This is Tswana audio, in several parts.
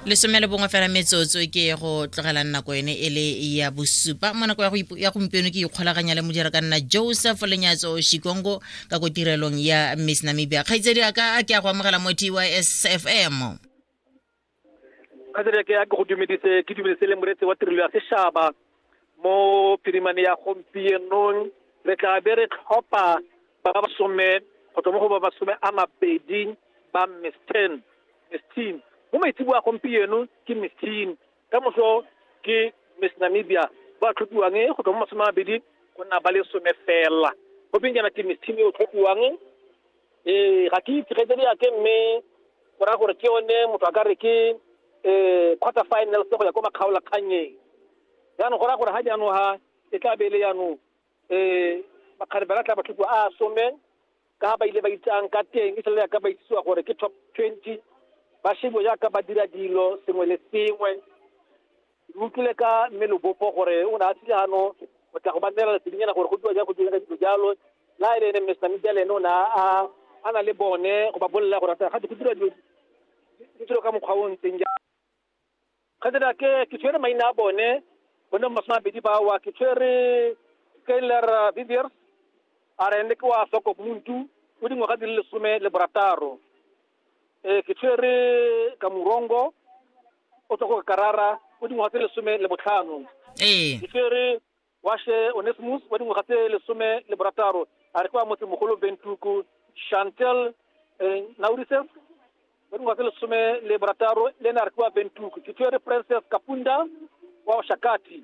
lesome le bongwe fela metsotso ke go tlogela nako ene e le ya bosupa mo nako ya gompieno ke ikgolaganya le modira ka nna joseph lenyatso shikongo ka ko tirelong ya miss namibia kgaitsedi a ka a ke a go amogela mo tysfm kgaitsedi a ke a ke go dumedise ke dumedise le moreetsi wa tirelo ya sešaba mo phirimane ya gompienong re tla be re tlhopha ba ba some go tswa mo go ba masome a mabedi ba miss ten miss teen mo maitsebo a gompieno ke miss teen ka moso ke miss namibia ba tlhophiwang go tswa mo masome a mabedi go nna ba le some fela go peng jaana ke miss teen e o tlhophiwang ee ga ke itse kgaitsedi yake mme go raya gore ke yone motho a ka re ke um quarter finals go ya ko makgaolakgannyeng jaanong go raya gore ga jaanong ga e tla be e le jaanong um bakgare ba tla matlhoko a some ka ba ile ba itsang ka teng e sele yaka ba itsisiwa gore ke top twenty ba shebo jaaka ba dira dilo sengwe le sengwe Re utlwile ka mme Lobopo gore o ne a tlile gano go tla go ba neela lesebinyana gore go diwa jang go diwa ka dilo jalo la e le ene Mr. Media le ene o ne a a na le bone go ba bolelela gore ga go dira dilo di dilo ka mokgwa o o ntseng jang ga dira ke ke tshwere maina a bone bone masome a bedi ba wa ke tshwere Skyler Viviers a re ne ke wa Soko Muntu o dingwaga di le lesome le borataro ee ke tshwere ka morongo o tswa go karara o dingwaga tse lesome le botlhano ee ke tshwere washe onesmus wa dingwaga tse lesome le borataro a re kwa motsemogolo bentuku chantel eh, naurises wa dingwaga tse lesome le borataro le ene a re kwa bentuku ke tshwere princess kapunda wa shakati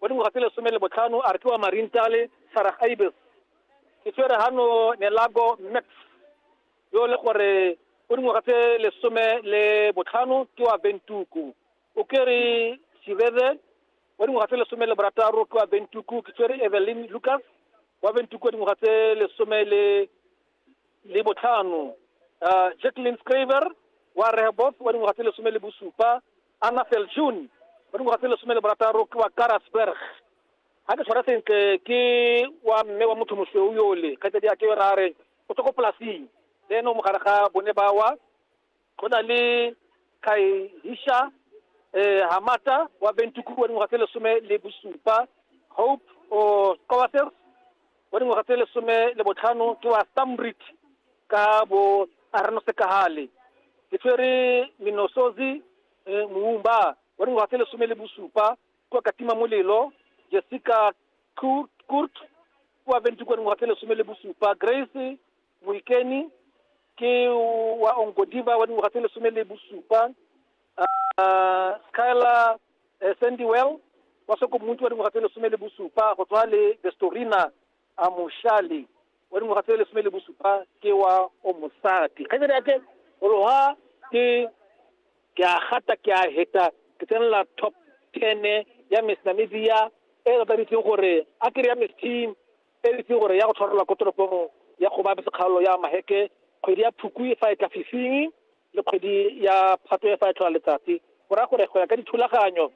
wa dingwaga tse lesome le botlhano a re ke wa marintale sarah ibis ke tshwere gano nelago max yo le gore o dingwaga tse lesome le botlhano ke wa bentuku o kere sibede wa dingwaga tse lesome le borataro ke wa bentuku ke tshwere evelyn lucas wa bentuku wa dingwaga tse lesome le le botlhano uh, jacqueline scriver wa rehboth wa dingwaga tse lesome le bosupa Anna Felchun ba dingwaga tse lesome le borataro ke wa Karasberg ga ke tshwara sentle ke wa mme wa motho mosweu yole kgaitsadi ya ke ra re o tswa ko polasing le ene o mogare ga bone bawa go na le kaihisha um hamata wa bentuku wa dingwaga tse lesome le bosupa hope o kowasel wa dingwaga tse lesome le botlhano ke wa Stamrit ka bo Arno Sekahale ke tshwere Minosozi eh, Muumba wa dingwaga tse lesome le bosupa kwa Katima Molelo Jessica Kurt, Kurt kwa Ventu kwa dingwaga tse lesome le bosupa Grace Moikeni ke wa Ongodiva wa dingwaga tse lesome le bosupa uh, Skyla eh, sandy well wa sokomuntsi wa dingwaga tse lesome le bosupa go tswa le bestorina a moshale wa dingwaga tse lesome le bosupa ke wa o mosadi kgaitsadi ake ologa ke ke a gata ke a heta ke tsenela top ten ya miss namibia e re tladitseng gore a kere ya miss team e re itseng gore ya go tshwarelwa ko toropong ya go ba sekgaolo ya maheke kgwedi ya phukwi fa e tla fifing le kgwedi ya Phatwe e fa e tlhola letsatsi. Go raya gore go ya ka dithulaganyo,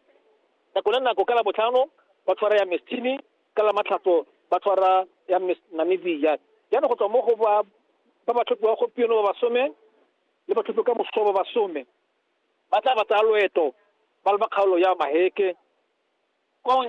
nako le nako ka Labotlhano ba tshwara ya Mestimi, ka Lamatlhatso ba tshwara ya Miss Namibia. Jaanong go tswa mo go ba ba ba tlhophiwa gompieno ba basome le ba tlhophiwa ka moso ba basome ba tla ba tsaya loeto ba le ba kgaolo ya Maheke. Kwa jaanong